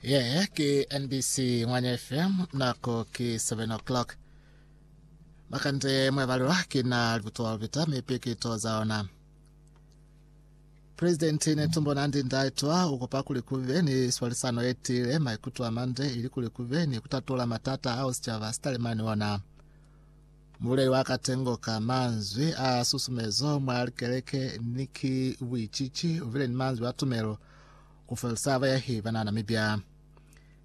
Ye ke NBC Ngwanya FM nako ke 7 o'clock. Makande mwebalelwa ke na libutuwa lubita mi pikitu za ona. President Netumbo Nandi Ndaitwa ukupa kuli kube ni swalisano yetile maikutu amande ili kuli kube ni kutatula matata ao sicaba sitalima ni ona. Mululeli wa katengo ka manzwi a susumezo mwa likeleke ni ki buicici ubile ni manzwi a tumelo ku felisa bayahi ba na Namibia.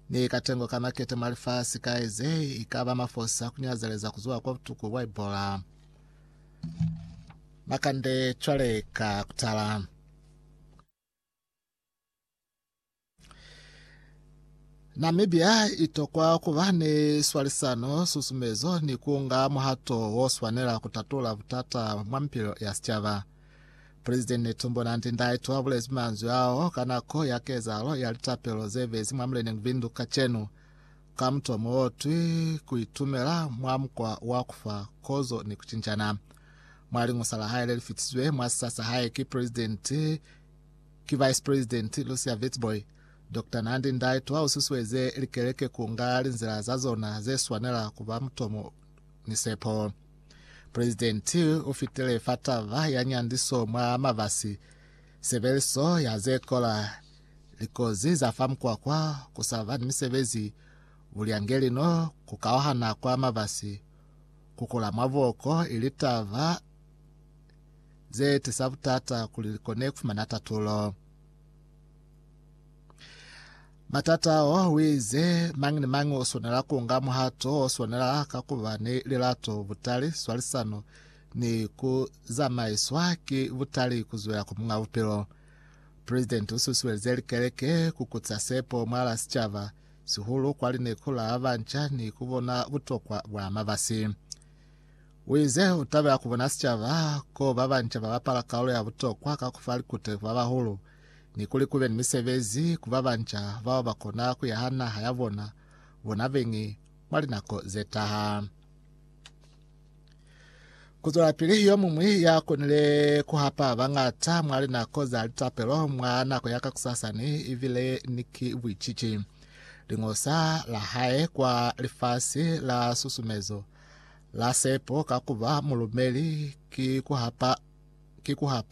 Ni katengo ka makete mwa lifasi kai ze i ka ba mafosa ku nyazeleza ku zuwa kwa butuku bwa Ebola. Makande cwale ka kutala. Namibia i tokwa ku ba ni swalisano, susumezo ni ku nga muhato wo swanela ku tatula butata mwa mipilo ya sicaba. President Netumbo Nandi-Ndaitwah u bulezi manzwi ao ka nako ya kezahalo ya litapelo ze bezi mwa muleneñi Bindu kacenu, ka mutomo o twi Ku Itumela mwa Mukwa wa ku fa Kozo ni ku Cinjana. Mwa liñusa la hae le li fitisizwe mwa sisa sa hae ki President, Ki Vice President Lucia Vitzboy, Doctor Nandi Ndaitwah ha u susueze likeleke ku nga linzila za zona ze swanela ku ba mutomo ni sepo. President u fitile fa taba ya nyandiso mwa mabasi, sebeliso ya ze kola, likozi za fa mukwakwa, ku sa ba ni misebezi, bulyangelino, ku kauhana kwa mabasi, ku kula mwa buoko, ili taba ze tisa butata kuli li kone ku fumana tatulo. Matata ao a wize mañi ni mañi o swanela ku nga muhato o swanela ka ku ba ni lilato, butali, swalisano ni ku zamaiswa ki butali ku zwela ku Muñ'a Bupilo. Presidenti u susuelize likeleke ku kuca sepo mwal'a sicaba, sihulu kwa lineku la banca ni ku bona butokwa bwa mabasi. U ize, U tabela ku bona sicaba ko ba banca ba bapala kaulo ya butokwa ka ku fa likute ku ba bahulu, ni kuli ku be ni misebezi ku ba banca bao ba kona ku ya ha naha ya bona bona beñi mwa linako ze taha. Ku zwelapili, Yo muñwi ya konile ku hapa bañata mwa linako za litapelo mwa nako ya kakusasa ni ibile ni ki buicici. Liñosa la hae kwa lifasi la susumezo La sepo ka kuba mulumeli ki kuhapa, ki kuhapa.